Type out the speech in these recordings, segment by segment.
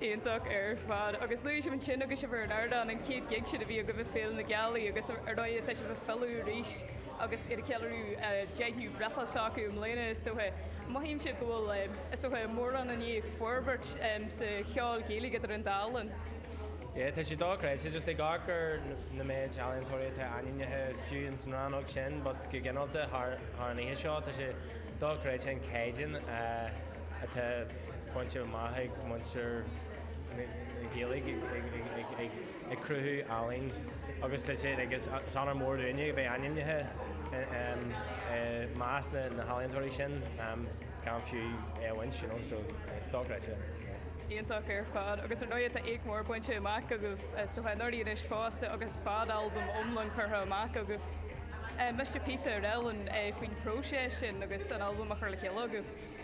Iontach ar fad. Agus luaigh sibh ansin agus sibh ar an ardán, an chéad gig sin a bhí agaibh ag Féile na Gealaí agus ar ndóigh tá sibh ag filleadh arís agus iad ag ceiliúradh an deichiú breithlá s'acu i mbliana is dócha. Mothaímse go bhfuil, is dócha, mórán i ndiaidh forbairt sa cheol Gaeilge idir an dá linn. Yeah, tá sé dochreidte, just ag amharc ar an mhéid ealaíontóirí atá ainmnithe, fiú ins an rannóg sin but go gineálta thar an oíche seo, tá sé dochreidte an caighdeán atá. bainte amach ag muintir na Gaeilge ag cruthú ealaín agus le sin agus is honóir mór dúinn é bheith ainmnithe i measc na healaíontóirí sin gan fiú é a bhaint, you know, so is dochreidte é. Iontach ar fad agus ar ndóigh tá éacht mór bainte amach agaibh is dócha anuraidh fosta agus fadalbam iomlán curtha amach agaibh. Inis dom píosa, cineál, faoin phróiseas sin agus an albam a chur le chéile agaibh?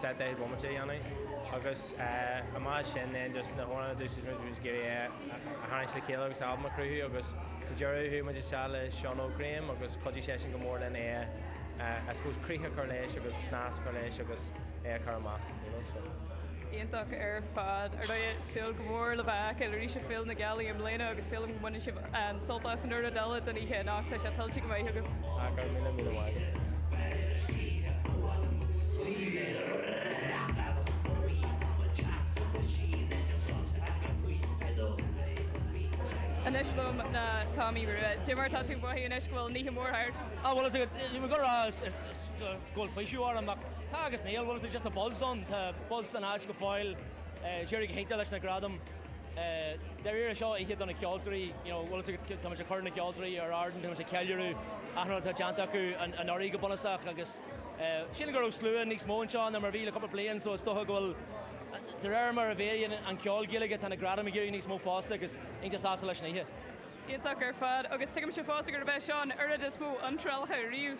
sa deich bhomaite a dhéanamh agus an méid sin den just na hamhráin a d'úsáid muid, bhí muid ag iarraidh é a tharraingt le chéile agus albam a chruthú agus sa deireadh chuaigh muid isteach le Seán Óg Graham agus chuidigh seisean go mór linn é a I suppose críoch a chur leis agus snas a chur leis agus é a chur amach you know so. Iontach ar fad. Ar ndóigh, súil go mór le bhur bhfeiceáil arís ag Féile na Gealaí i mbliana agus súil agam go mbaineann sibh Sult as an chuid eile den oíche anocht, tá sé tuillte go maith agaibh. Go raibh míle míle maith. Anois liom ná Tomaí Rua. Cad é mar atá tú ag mothú anois go bhfuil an oíche mór thart? Á bhuel ba mhaith liom a rá go bhfuil faoiseamh orm ach tá agus níl, bhfuil fhios agat just an buzz ann, tá buzz san áit go fóill, d'éirigh go hiontach leis na gradaim. Dáiríre, seo oíche do na ceoltóirí, you know, bhfuil fhios agat, tá muid ag cur na ceoltóirí ar ard, tá muid ag ceiliúradh achan rud atá déanta acu anuraidh go bunúsach agus sílim go raibh slua níos mó anseo ná mar a bhí le cúpla bliain so is dócha go bhfuil, de réir mar a mhéadaíonn an ceol Gaeilge, tá na gradaim ag éirí níos mó fosta agus tá mé iontach sásta leis an oíche. Iontach ar fad agus tuigimse fosta gurb é seo an t-am is mó iontrálacha riamh.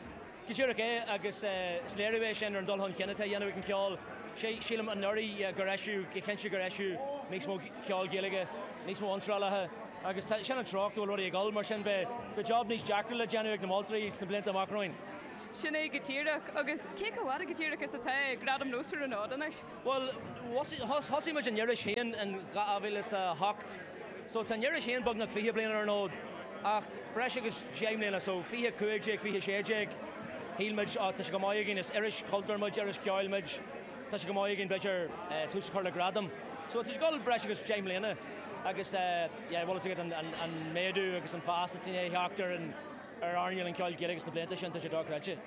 Díreach é, agus is léiriú é sin ar an dul chun cinn atá á dhéanamh ag an gceol. Sílim anuraidh gur eisiadh, go cinnte gur eisiadh níos mó ceoil Gaeilge, níos mó iontrálaithe, agus sin an treo a bhfuil rudaí ag dul, mar sin beidh job níos deacra le déanamh ag na moltóirí sna blianta amach romhainn. Sin é go díreach. Agus cé chomh fada go díreach is atá Gradaim Nós ar an fhód anois? Bhuel, thosaigh muid an iris féin in 2008, so tá an iris féin beagnach fiche bliain ar an fhód, ach breis agus deich mbliana, so fiche a cúig déag, fiche a sé déag, shíl muid, á, tá sé chomh maith againn, is iris chultúir muid, iris cheoil muid, tá sé chomh maith againn, b'fhéidir, tús a chur le gradam. So tá sé ag dul breis agus deich mbliana agus, yeah, bhfuil fhios agat an méadú agus an fás atá i ndiaidh teacht ar an, ar airneáil an cheoil Ghaelaigh sna blianta sin, tá sé dochreidte.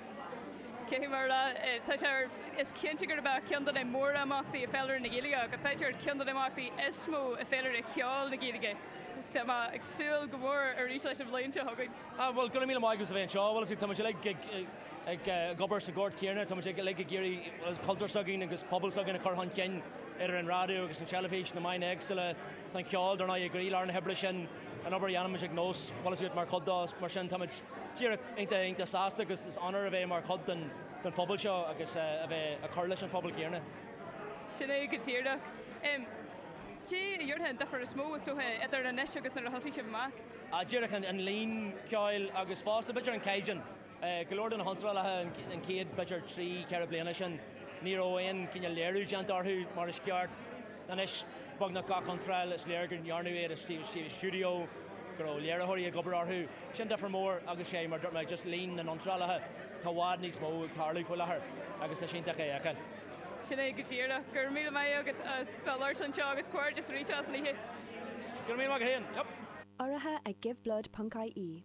Cé hé mar atá? Tá sé. Is cinnte gurb é ceann de na mórimeachtaí i bhféilire na Gaeilge, agus b'fhéidir ceann de na himeachtaí is mó i bhféilire cheoil na Gaeilge. Agus tá mé ag súil go mór arís leis an bhliain seo chugainn. Ah, bhuel, gura míle maith agat as a bheith anseo. Bhuel, is é, táimid uilig ag, ag, ag obair sa ghort chéanna. Táimid ag, uilig ag iarraidh, bhuel, an cultúr s'againn agus an pobal s'againn a chur chun cinn, idir an raidió agus an teilifís, na meáin éagsúla, tá an ceol, dar ndóigh, i gcroílár na hoibre sin. an obair a dhéanaimid ag nós, bhfuil fhios agat, mar chuid dó, mar sin táimid díreach iontach, iontach sásta agus is onóir a bheith mar chuid den, den phobal seo agus a bheith ag cur leis an phobal céanna. Sin é go díreach. Cad é a déarfá an difear is mó, is dócha, idir anois agus nuair a thosaigh sibh amach? Díreach an, an líon ceoil agus fosta b'fhéidir an caighdeán. Go leor de na hiontrálacha an chéad, b'fhéidir, trí, ceithre bliana sin, ní raibh aon chineál léiriú déanta orthu mar is ceart. Anois, beagnach gach iontráil, is léir go ndearnadh iad i stiúideo, go raibh léiritheoirí ag obair orthu. Sin difear mór agus sea, mar a dúirt mé, just líon na n-iontrálacha, tá i bhfad níos mó ag tarlú faoi láthair agus tá sé iontach é a fheiceáil. Sin é go díreach. Go raibh míle maith agat as bheith ag labhairt anseo agus comhghairdeas arís as an oíche. Go raibh míle maith agat féin. Yep. Urraithe ag Giveblood. ie.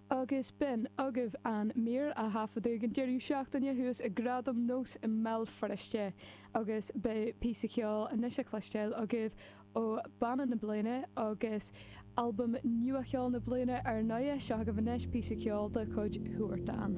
Agus b'in agaibh an mhír a taifeadadh ag an deireadh seachtaine thuas ag Gradaim nós i mBéal Feirste agus beidh píosa ceoil anois le cloisteáil agaibh ó Bhanna na Bliana agus Albam Nua Cheoil na Bliana ar ndóigh. Seo agaibh anois píosa ceoil de chuid Huartán.